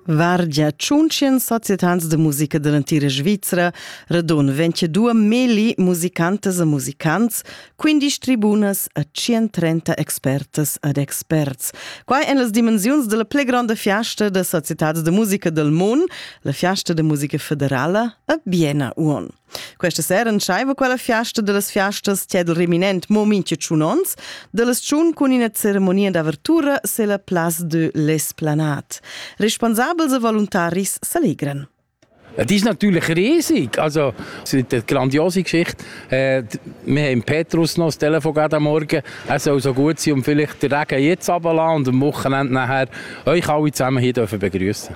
Vargia tschunchen societans de musica de l'entira Svizra, radon venche dua meli musicantas e musicants, quindisch tribunas e 130 expertas ed experts. Quai en las dimensiuns della ple grande fiasta de societats de musica del mon, la fiasta de musica federala a Biena Uon. Questa sera entscheiva quella fiasta dellas fiastas tiedel reminent mo mincha tschun ons, dellas tschun cun ina ceremonia d'avertura se la Place de l'Esplanade. Responsabels e voluntaris s'allegran. Das ist natürlich riesig. Also, es ist eine grandiose Geschichte. Äh, wir haben Petrus noch das Telefon gerade am Morgen. Es soll so gut sein und vielleicht den Regen jetzt runterlassen und am Wochenende nachher euch alle zusammen hier begrüßen.